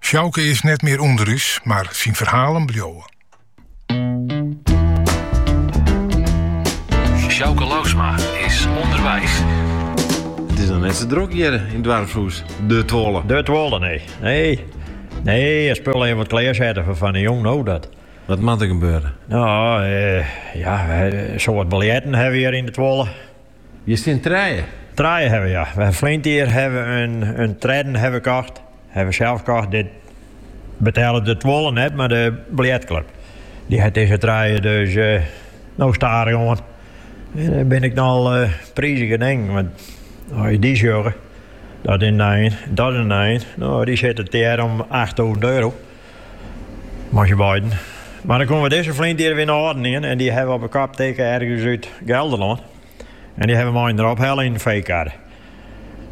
Sjouke is net mear ûnder ús, mar syn ferhalen bliuwe. Sjouke Lousma is ûnderweis. It is dan net sa drok hjir yn it doarpshûs. De Tuolle. De Tuolle, nee. Nee, nee de spullen even wat klearsette foar fan 'e jûn, no dat. Wat moat der gebeure? No, eh, ja, eh, sa wat biljerten hawwe we hjir yn de Tuolle. Hjir stean trije. Trije hawwe we ja. We hawwe ferline jier hawwe we in tredden hawwe we kocht. Hawwe we sels kocht. Dit betellet de Tuolle net, mar de biljertklup. Dy hat dizze trije dus no stadichoan. En dat binne ek nochal prizige dingen. Want as je dy sjogge, dat is in nijen, dat is in nijen. No, dy sitte tegearre om achttûzen euro. Moasje beiden. Mar dan komme we dizze ferline jier, wie in âlden ien en dy hawwe we op 'e kop tikke ergens út Gelderlân en dy hawwe we mei-inoar ophelle yn in feekarre.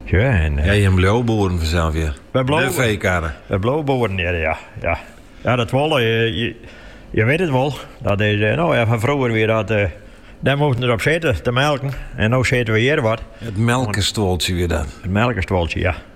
Tsja. Jim bliuwe boeren fansels wer. Wy bliuwe. De feekarre. Wy bliuwe boeren hear, ja. Ja. Ja, de Tuolle. Je witte it wol. Dat is, no ja, fan froeger wie dat, dêr moasten der op sitte te melken en no sitte we hjir wat. It melkestuoltsje wie dat. It melkestuoltsje, ja.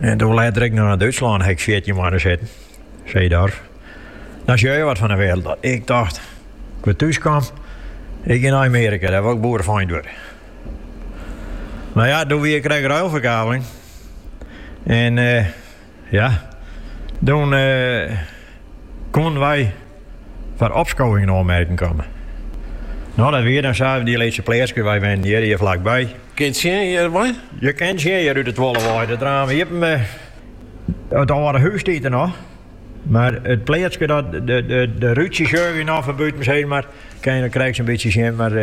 En doe letter ek nei Dútslân ha'k fjirtjin moanne sitten, Seedorf. Dan sjogge je wat fan de wereld. Dat ik dacht, ik wer thús kom, ik gean nei Amerika, dêr woe ik boerefeint wurde. Mar ja, doe wie krekt ruilverkaveling. En uh, ja, doe uh, eh, koenen wy foar opskowing yn oanmerking komme. No, dat wie dan safier, dy lytse pleatske, wy wennen hjir, hjir flakby. Kinne it sjen hjir wei? Je kinne it sjen hjir út de Tuolle wei. It raam iepen, mar it âlde hûs stiet der noch, mar it pleatske dat de rútsjes sjoch yn of bûtens heit, mar kinne it krekt sa'n bytsje sjen. Mar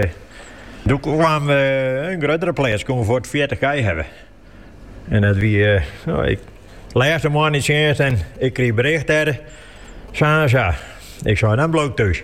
doe kaam in gruttere pleats, koene we fuort fjirtich kij hawwe. En dat wie, no, ik lêste moanne yn tsjinst en ik krige berjocht dêr, sa en sa. Ik sei, dan bliuw ik thús.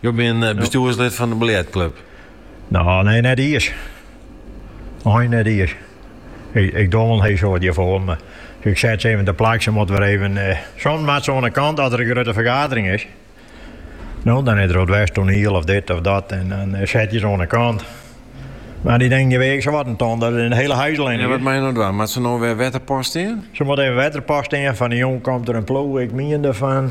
Jo bin bestjoerslid fan de biljertklup? No, nee, net iens. Eins net iens. Ik, ik doch wol hiel soad hjirfoar, mar ik set se even teplak. Se moatte wer even. Eh, soms moatte se oan de kant as der in grutte fergadering is. No, dan is der wat west, toaniel of dit of dat en dan eh, sette je se oan de kant. Mar dy dingen, dy weagje sawat in ton, dat is in hiele hijs allinne. Ja, wat moatte je no dwaan? Moatte se no wer wetterpas stean? Se moatte even wetterpas stean. Fan 'e jûn komt der in ploech, ik mien derfan.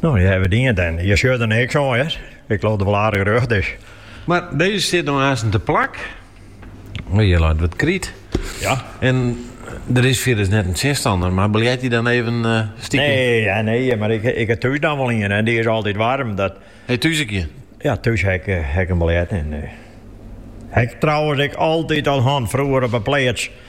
No, je hawwe it dien en je sjogge der niks oan, hear. Ik leau dat er wol aardich rjocht is. Mar dizze stiet no aansten te plak. Hjir leit wat kryt. Ja. En der is fierders net in tsjinstanner, mar biljerte je dan even uh, stiekem? Nee, ja, nee, mar ik, ik ha thús dan wol ien en dy is altyd waarm. Dat... Ha je thús ek ien? Ja, thús ha ik, eh, ha ik in biljert. En, uh, eh, ha'k trouwens ek altyd al hân froeger op 'e pleats